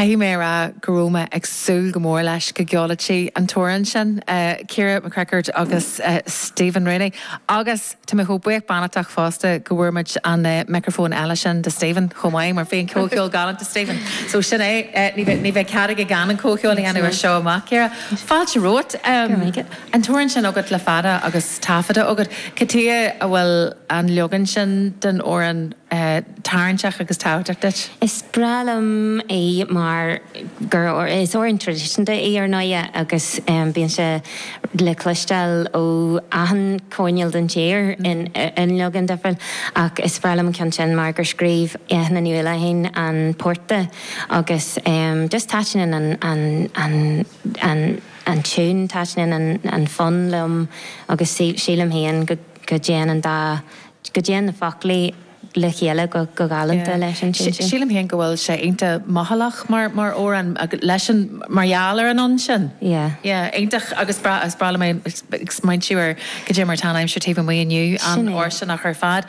Caithfidh mé a rá go raibh mé ag súil go mór leis go gceolfadh sí an t-amhrán sin, Ciara McCrickard agus Stephen Rooney, agus tá mé chomh buíoch beannachtach fosta go bhfuair muid an micreafón eile sin do Stephen chomh maith, mar bhí an comhcheol galánta Stephen. So sin é, ní bheidh cead aige gan an comhcheol a dhéanamh as seo amach, Ciara. Fáilte romhat. an t-amhrán sin agat le fada agus taifeadta agat, cad tuige a bhfuil an leagan sin den amhrán tarraingteach agus tábhachtach duit? Is breá liom é mar gur is amhrán traidisiúnta í ar ndóigh agus bíonn sé le cloisteáil ó achan choirnéal den tír i leagan difriúil ach is breá liom an ceann sin mar gur scríobh Eithne Ní Uallacháin an port di agus just taitníonn an an tiún, taitníonn an fonn liom agus sílim féin go dtéann an dá, go dtéann na foclaí le chéile go galánta leis an tiún sin. Sílim féin go bhfuil sé iontach mothálach mar amhrán leis an, mar gheall ar an fhonn sin. Yeah. Yeah, iontach agus breá, is breá liom é, ag smaointiú ar goidé mar atá an aimsir taobh amuigh inniu, an-fhóirsteanach ar fad.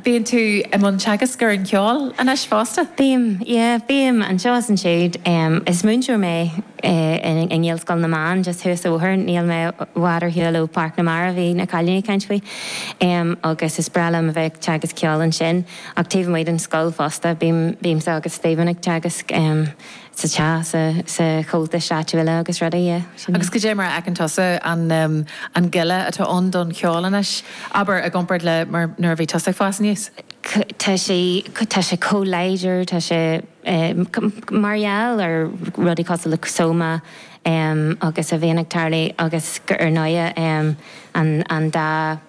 Bíonn tú i mbun teagasc ar an cheol anois fosta? Bím, yeah, bím anseo is ansiúd. Is múinteoir mé i nGaelscoil na mBeann just thuas an bóthar, níl mé i bhfad ar shiúl ó Pháirc na Mara a bhí na cailíní ag caint faoi, agus is breá liom a bheith ag teagasc ceoil ansin. Ach taobh amuigh den scoil fosta, bím, bímse agus Stephen ag teagasc. sa chás, sa Chomhaltas áitiúil agus rudaí, yeah, sin é. Agus goidé mar a fheiceann tusa an, an goile atá ann don cheol anois, abair, i gcomparáid le mar, nuair a bhí tusa ag fás aníos? Tá sé, tá sé chomh láidir, tá sé, mar gheall ar rudaí cosúil le Soma agus a bhíonn ag tarlú agus go, ar ndóighe, an dá,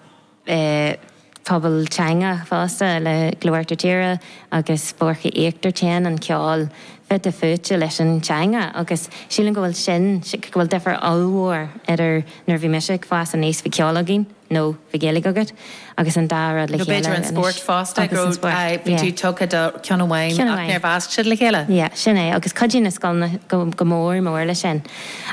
dá phobal teanga fosta, le Glór Uachtar Tíre agus Boirche Íochtar téann an ceol fite fuaite leis an teanga agus sílim go bhfuil sin, go bhfuil difir ollmhór idir nuair a bhí mise ag fás aníos bhí ceol againn nó bhí Gaeilge agat agus an dá rud le chéile anois. Nó b'fhéidir an spórt fosta, go raibh, aye, bhí tú tugtha do ceann amháin ach níor mheasc siad le chéile. Yeah, sin é agus cuidíonn na scoileanna go mór mór le sin.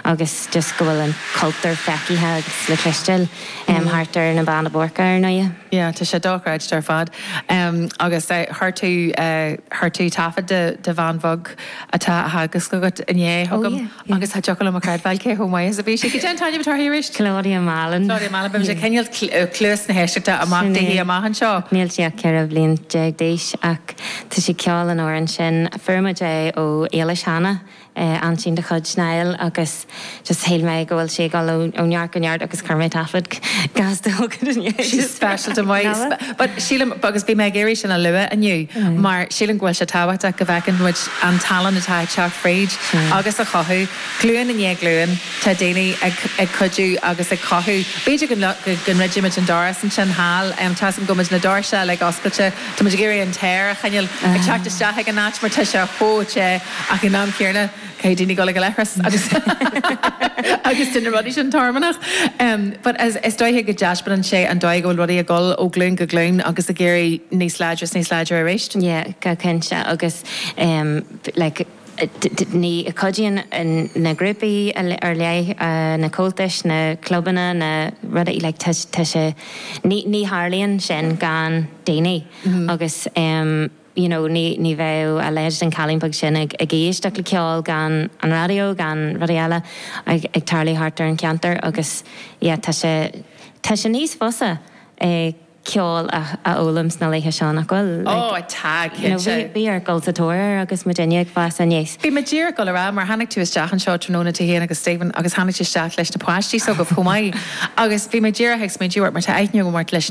agus just go bhfuil an cultúr feicithe agus le cloisteáil thart ar na Beanna Boirche ar ndóigh. Yeah, tá sé dochreidte ar fad. Agus chuir tú, chuir tú taifead de, de bhean bheag atá á teagasc agat inné chugam agus ba dheacair liom a chreidbheáil cé chomh maith is a bhí sí. Goidé an t-ainm atá uirthi arís? Claudia Mallon. Claudia Mallon, bígí ag coinneáil cluas na héisteachta amach daoithe amach anseo. Níl sí ach ceithre bhliain déag d'aois ach tá sí ag ceol an amhráin sin. Fuair muid é ó Éilis cheana. aintín de chuid Niall agus just shíl mé go bhfuil sí ag dul ó neart go neart agus chuir mé taifeadadh gas de thug it inné She's just for special to my sp Nada? but sílim agus bhí mé ag iarraidh sin a lua inniu mar sílim go bhfuil sé tábhachtach go bhfeiceann muid an tallann atá ag teacht fríd agus a chothú. Glúin i ndiaidh glúin tá daoine ag ag cuidiú agus ag cothú. B'fhéidir go go go ndruidfidh muid an doras ansin thall em tá 's agam go muid na doirse uilig oscailte Tá muid ag iarraidh an t-aer a choinneáil ag teacht isteach ag an áit mar tá sé chomh te ach ag an am céanna caithfidh daoine dul chuig an leithreas agus agus déanann na rudaí sin tormán but is dóiche go dtaispeánann sé an dóigh a bhfuil rudaí ag dul ó ghlúin go glúin agus ag éirí níos láidre is níos láidre arís. Yeah go cinnte agus like. Ní cuidíonn na grúpaí ar leith, na comhaltais, na clubanna, na rudaí, like tá sé, ní tharlaíonn sin gan daoine agus you know ní bheadh a leithéid den chailín bheag sin ag éisteacht le ceol gan an raidió gan rudaí eile ag tarlú thart ar an cheantar agus yeah tá sé, tá sé níos fusa ag. ceol a fhoghlaim sna laetha seo, nach bhfuil? Ó, tá, cinnte. Bhí ort dul sa tóir air agus muidinne ag fás aníos. Bhí mé díreach dul ar ais, mar tháinig tú isteach anseo tráthnóna, tú fhéin agus Stephen, agus tháinig tú isteach leis na páistí s'agaibh chomh maith, agus bhí mé díreach ag smaointiú ort, mar tá aithne agam ort leis na.